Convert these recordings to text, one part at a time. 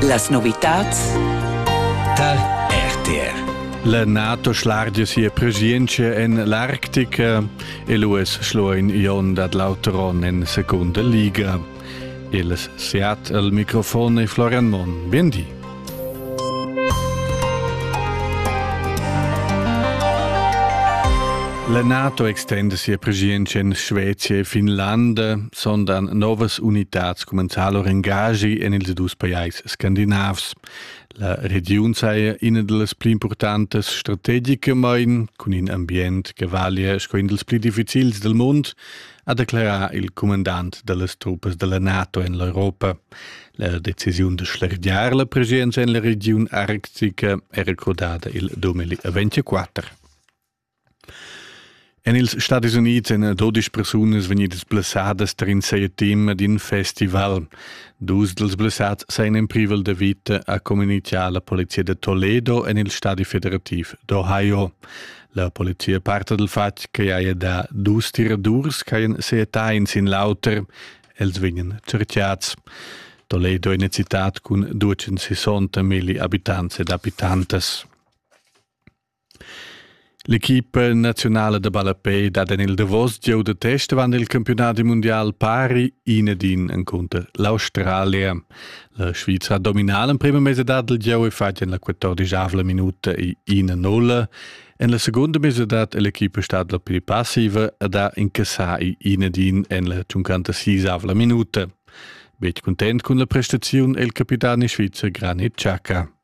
Las novitads tar RTR. La NATO schlargia sia presienza en l'Arctica e l'US schloin Ion dat l'auteron en seconda liga. Il Seat al microfon e Florian Mon. Bien di. La NATO extenda sia preschientscha en Svezia e Finlanda, sondern novas unitads cumenzar lur engagi en ils dus pajais scandinavs. La regiun saja ina dals pli importantas strategicamain, cun in ambient che valia sco in dals pli difficils del mund, ha declerà il cumandant da las truppas da la NATO en l'Europa. La decisiun da schlergiar la presenza en la regiun arctica è recordada il 2024. En ils Stati Unids èn 12 persunas vegnidas blessadas tar in seia team d'in festival. Dus dals blessats sajan en privel da vita, ha communitgà la polizia da Toledo en il stadi federativ d'Ohio. La polizia parta dal fatg che haja dà dus tiradurs ch'hajan seetà in sin l'auter. Els vegnan cerchiads. Toledo è una città con 260 mili abitants ed abitantes. L'equipa nazionale da ballapei dat en il Davos gieu de test avant il campionat mundial pari in ed in encunter l'Australia. La Svizra dominala prima mese dad il gieu è fatg en la 14avla minuta e 1-0. En la seconda mese dat l'equipa stat la pli passiva ed ha incassà inedin en la 56avla minuta. Betg content cun la prestaziun è il capitano svizzer Granit Xhaka.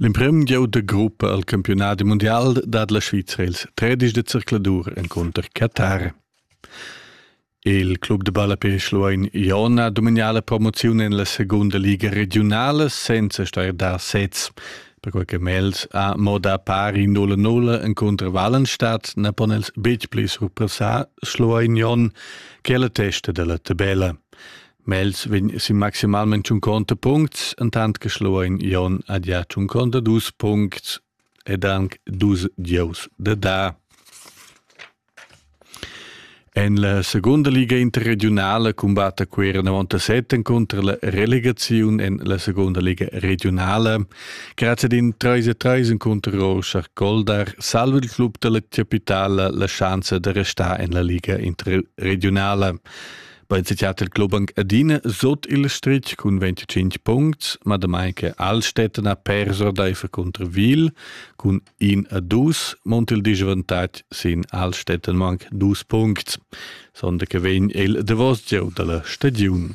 L'emprim gieu da gruppa al campiunadi mundial dat la Svizra ils tredisch da zercladur encunter Qatar. Il club da balla per Schluein Ion ha domignà la promoziun en la segunda liga regiunala senza star da sez. Perquai che Mels ha moda pari 0-0 encunter Wallenstadt na pon els betg pli surpassar Schluein Ion che la testa della tabella. Mels vegn sin maximalment tschunconta puncts, entant che Schluein Jon ha gia tschunconta dus puncts ed anc dus gieus da da. En la segunda liga interregiunala cumbatta Cuera 97 cunter la relegaziun en la segunda liga regionala. Grazie ad in 3-3 encunter Rorschach Goldar salva il club dalla capitala la schanza da restar en la liga interregionala. Bei der Theaterclubung Adine sot il Strich cun 25 punts, ma damai che Alstetten ha perso ordaifer contro Wil cun in a dus, mont il disavantatg sin Alstetten manc dus punts, sonde che vegn il davos gieu dalla stagiun.